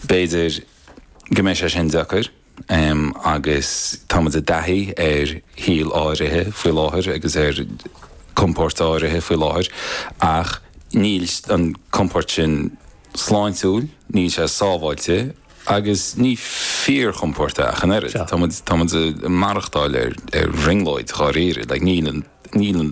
B'fhéidir go mbeidh sé sin deacair agus táimid i dtaithí ar shaol áirithe faoi láthair agus ar chompord áirithe faoi láthair ach níl an compord sin sláintiúil, níl sé sábháilte agus ní fíorchompord é ach an oiread. Táimid ag maireachtáil ar bhrionglóid dháiríre. Like, níl an, níl an.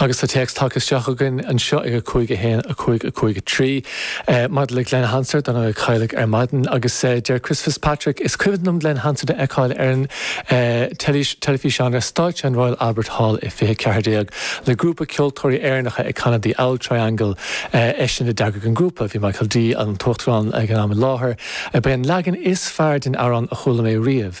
Agus tá téacs tagtha isteach againn anseo ag 5 1, 5, 5, 3, maidir le Glen Hansard, ar ndóigh, a cailleadh ar maidin, agus deir Chris Fitzpatrick, Is cuimhin liom Glen Hansard a fheiceáil ar an teilifíseán ar stáitse an Royal Albert Hall i 2014 le grúpa ceoltóirí Éireannacha ag canadh The Auld Triangle. Eisean a d'eagraigh an grúpa. Bhí Michael D, an tUachtarán ag an am i láthair. Ba é an leagan is fearr den amhrán a chuala mé riamh.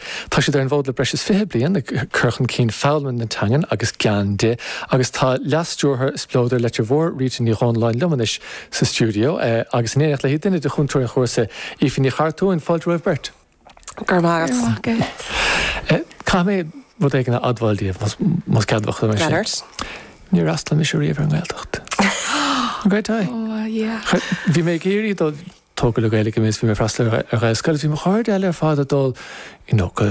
Tá siad ar an bhfód le breis is fiche bliain ag cur chun cinn foghlama na teangan agus gean di agus tá Leas-Stiúrthóir Spleodar Leitir Mhóir, Rita Ní Dhomhnalláin liom anois sa stiúideo agus in éineacht léi duine de chúntóirí an chúrsa, Aoife Ní Chartúin. Fáilte romhaibh beirt. Go raibh maith agat. Go raibh maith agat. Caithfidh mé rud éigin a admháil daoibh más ceadmhach dom é sin. Go raibh. Níor fhreastail mise riamh ar an nGaeltacht. An Gaeilge? Ó, yeah. Bhí mé ag iarraidh dul tógadh le Gaeilge mé is bhí mé ag freastal ar Ghaelscoil. Bhí mo chairde eile ar fad ag dul go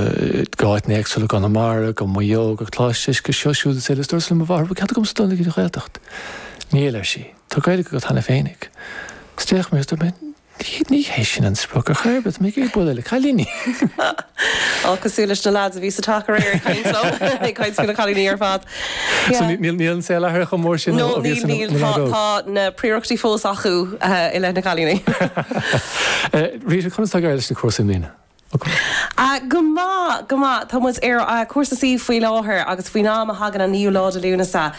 háiteanna éagsúla, go Conamara, go Maigh Eo, go Coláiste Uisce, seo, siúd is eile, is dúrtsa le mo mháthair, an bhfuil cead agamsa dul ag an Ghaeltacht. Níl, ar sí. Tá Gaeilge agat cheana féinig. Is d'fhéach mé is dúirt mé, ní hé sin an sprioc ar chor ar bith, tá mé ag iarraidh bualadh le cailíní. Á, cosúil leis na leaids a bhí sa teach aréir ag caint leo, ag caint faoi na cailíní ar fad. So níl an saol athraithe chomh mór sin ó a bhíos i mo leaid óg? Níl, tá na príorachtaí fós acu i leith na gcailíní. Rita, conas tá ag dul leis na cúrsaí i mbliana? Go maith, go maith. Tá muid ar Chúrsa C faoi láthair agus faoin am a thagann an naoú lá de Lúnasa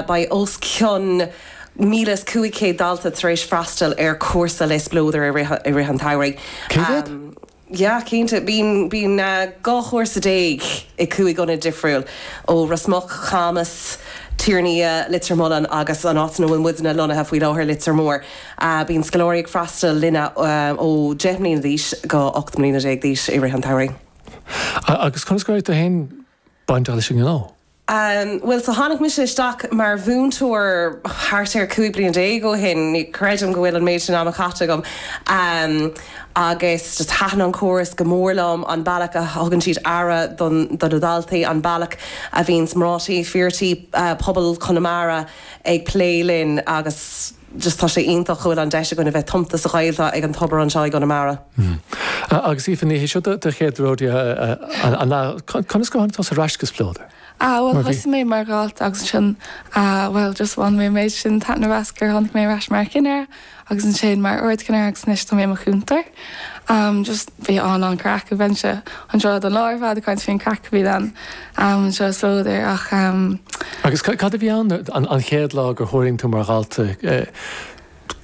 beidh os cionn míle is cúig chéad dalta tar éis freastal ar chúrsa le Spleodar i rith an tsamhraidh. Cé mhéad? Yeah, cinnte. Bíonn, bíonn dhá chúrsa déag i cúig ionad difriúil, ó Ros Muc, Camas, Tír an Fhia, Leitir Mealláin agus an áit ina bhfuil muidne lonnaithe faoi láthair, Leitir Móir. Bíonn scoláirí ag freastal linne ó deich mbliana d'aois go ocht mbliana déag d'aois i rith an tsamhraidh. Agus conas a raibh tú féin bainteach leis an ngnó. Bhuel, so tháinig mise isteach mar mhúinteoir thart ar 15 bliain ó shin, ní chreidim go bhfuil an méid sin ama caite agam, agus just thaitin an córas go mór liom, an bealach a thugann siad aire do na daltaí, an bealach a bhíonns mná tí, fir tí, pobal Chonamara ag plé linn agus. just tá sé iontach go bhfuil an deis againn a bheith tumta sa Ghaeltacht ag an tobar anseo i gConamara. Agus Aoife Ní hé seo do chéad rodeo an ea? Conas a tháinig tusa ar ais go Spleodar? Ah bhuel thosaigh mé mar dhalta agus ansin bhuel just bhain mé an méid sin taitneamh as gur tháinig mé ar ais mar chinéara agus ansin mar ardchinéara agus anois tá mé i mo chúntóir. Just bhí an an craic bheinn anseo don lá ar fad ag caint faoin craic a bhí ann am anseo sa údar ach. Agus cad a bhí ann an chéad lá gur thuirling tú mar dhalta?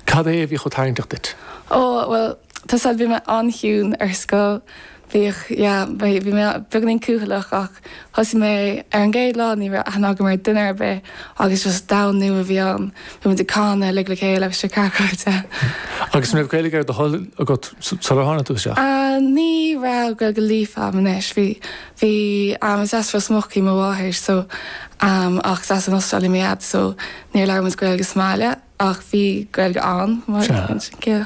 Cad é a bhí chomh tarraingteach duit? Ó, bhuel, tá's a'd, bhí mé an-chiúin ar scoil. Bhíodh, yeah, bhí mé beagáinín cúthaileach ach thosaigh mé, ar an gcéad lá ní raibh aithne agam ar duine ar bith agus just domhan nua a bhí ann. Bhí muid ag canadh uilig le chéile agus seo ceard a raibh de. Agus an raibh Gaeilge ar do thoil agat sular tháinig tú isteach? Ní raibh, Gaeilge líofa a'm anois, bhí, Bhí, is as Ros Muc í mo mháthair so ach is as an Astráil í mo dhaid so níor labhair muid Gaeilge sa mbaile ach bhí Gaeilge a'm mar sin, yeah.